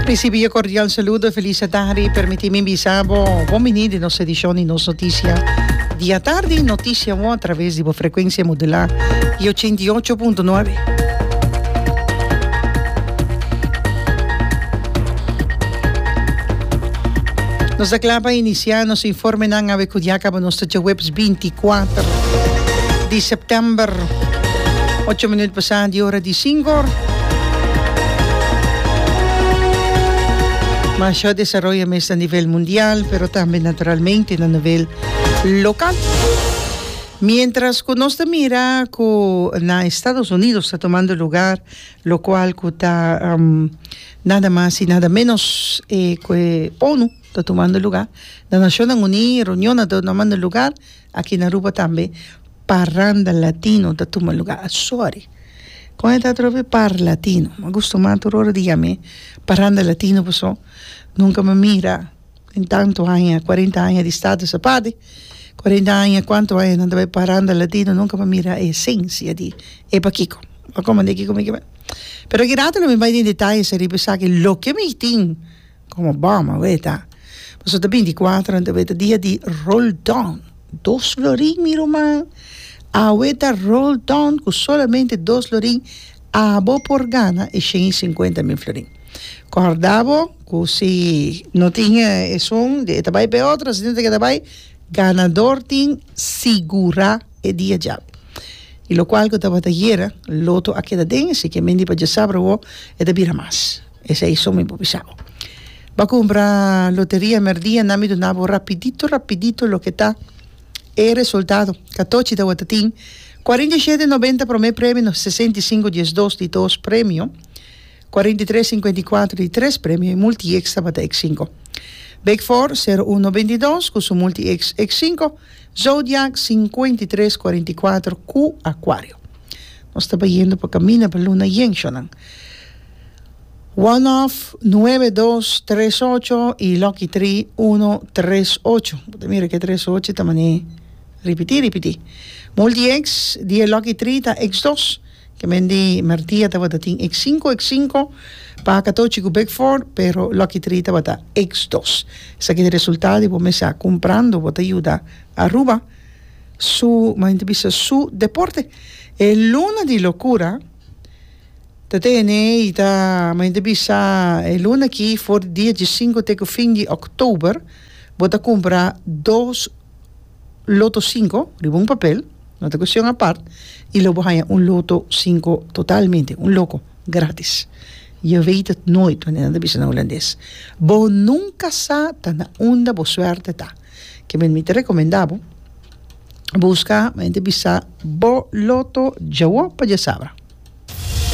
Risibi e kordial saludo, e felis e tardi. Permití mi bisa bo bon biní den nos edishon di Nos Notisia di atardi. Notisia bo a traves di bo frekuensia modulá di ochenta i ocho punto nuebe. Nos ta kla pa inisiá nos informenan awe kudia kaba nos ta dje web. binti kuater di september, ocho minut pasá di ora di sinko. Mashó desaroyo mester a nivel mundial, pero tambe naturalmente na nivel lokal. Miéntras ku nos ta mira ku na Estados Unidos ta tumando lugar, lokual ku ta nada mas i nada ménos ku e onu. ta tumando lugá na Nashonnan Uní, reunionnan ta tumando lugá aki na Aruba tambe, Parranda Latino ta tuma lugá asori. Kon e ta atrobe Parlatino? M'ha gusta mas tur ora di yam'é Parranda Latino pasobra nunka m'ha mira den tantu aña, kuarenta aña di status aparte, kuarenta aña, kuantu aña nan ta bai Parranda Latino nunka m'ha mira e esensia di e pakiko. M'ha komand'é kiko mi ke bai. Pero aki rato lo mi bai den detalles ariba esaki loke mi tin. Komo Bama weta, paso ta binticuatro nan ta weta dia di Roldan, dos florin mi ruman, awe ta Roldan cu solamente dos florin abo por gana e shen y cincuenta mil florin. Corda bo cu si no tin esun e ta bay pa e otro, si tin ta keda bay, ganador tin sigura e dia djabi. Y locual cu tabata yera loto a keda den, así que men di pa dja sabra awo e ta bira mas. Esei so mi por bisa bo. Bo a cumpra loteria merdia nan mi duna bo rapidito rapidito loke ta e resultado. Catochi tabatin ta tin cuarenta y siete noventa prome premio, sesenta y cinco diesdos di dos premio, cuarenta y tres cincuenta y cuatro di tres premio y multiextra tabata ex cinco. Big four sero uno noventa y dos cu su multiex ex cinco, zodiac cincuenta y tres cuarenta y cuatro cu acuario. Nos ta bayendo pa camina pa luna yen shonan. One of nuebe dos tres ocho y Lucky tri uno tres ocho bo ta mira ke tres ocho ta mane ripiti ripiti multi x di e Lucky tri ta x dos ke men di Mertia tabata tin x sinku x sinku paka tochi ku bek for pero Lucky tri tabata x dos esaki ta resultado y bo mes a kumprando bo ta yuda Aruba su manera ta bisa su deporte e luna di lokura. Ta tene y ta mi a hende bisa e luna aki for di dia diesinco te cu fin di october bo ta cumpra dos loto cinco riba un papel no ta cuestion apart y lo bo haya un loto cinco totalmente un loco gratis je weet het nooit mi ta bisa na holandes bo nunca sa ta na unda bo suerte ta kimen mi ta recomenda bo Busca, mente bisa, bo loto djawo pa dja sabra.